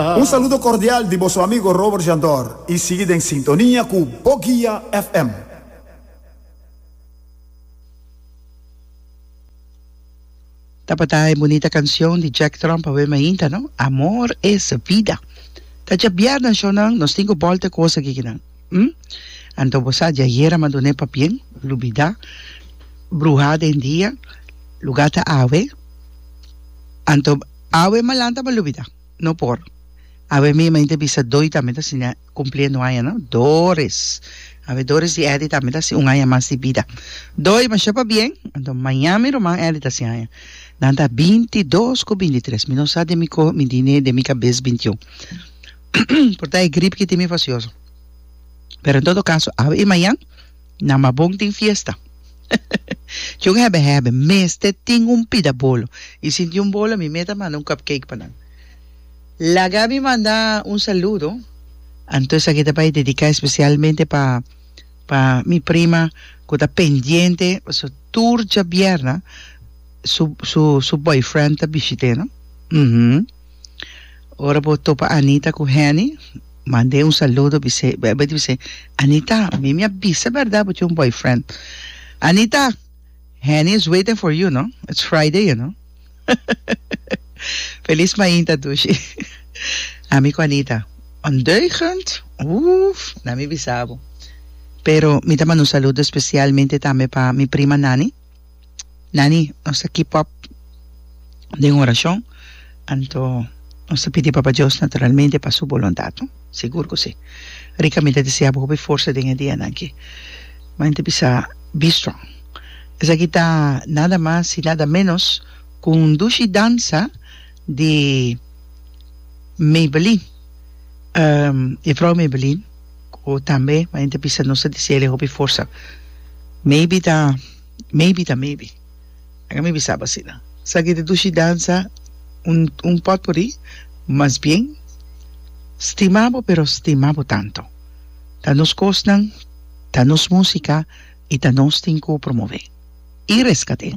Un saludo cordial di boso amigo Robert Jandor y sigui den sintonia cu Bo Guia FM. Tabata e bunita cancion di Jack Trump awe mainta, no? Amor es vida. Ta dja biaha nan show nan, nos tin cu bolta e cosa aki kinan. Hm? Anto bo sa, di ayer a manduné pa bien, lubida, bruha den dia, luga ta awe, anto awe malanta bo lubida. No por. Awe mi main ta bisa Doy tambe ta siña cumpliendo aña no? Doris. Awe Doris di Eddy tambe ta haci un aña mas di bida. Doy, masha pa bien. Anto maña mi ruman Eddy ta haci aña. Nan ta binti dos cu binti tres. Mi no sa den mi coge mi dine den mi cabes binti un. Por ta e grip ki tin mi facioso. Pero en todo caso awe y mañan. Na Mabon tin fiesta. Chun hebe hebe mester tin un pida bolo. Y sin tin un bolo mi meta manda un cupcake pa nan. Laga mi manda un saludo. Anto aki ta bay dedica especialmente pa pa mi prima cu ta pendiente pasobra tur djabierna su su su boyfriend ta bishit'e no. Uhmm. Ora bo topa Anita ku Henny, mand'e un saludo bis'e, bo bai di bis'e, Anita, mi mi a bisa bèrdat bo tin un boyfriend. Anita, Henny is waiting for you, no? It's Friday, you know. Feliz mainta Dushi. Ami ku Anita, ondeugend, uff, na mi bisa bo. Pero mi ta manda un saludo spesialmente tambe pa mi prima Nani. Nani, nos ta keep up den orashon, anto nos ta pidi Papa Dios naturalmente pa Su boluntat, no? Sigur ku si. Rica, mi ta deseabo hopi forsa den e dianan aki. Mami ta bisa, Be strong. Esaki ta nada mas i nada ménos ku un dushi dansa di Maybelline, Jefrouw Maybelline. Ku tambe e hende ta bisa nos ta disiel e hopi forsa. Maybe ta maybe ta maybe. Laga mi bisabo asina. Esaki ta dushi dansa un un potpourri, mas bien stima bo pero stima bo tanto. Ta nos kosnan, ta nos musika i ta nos tin ku promove i reskat'é.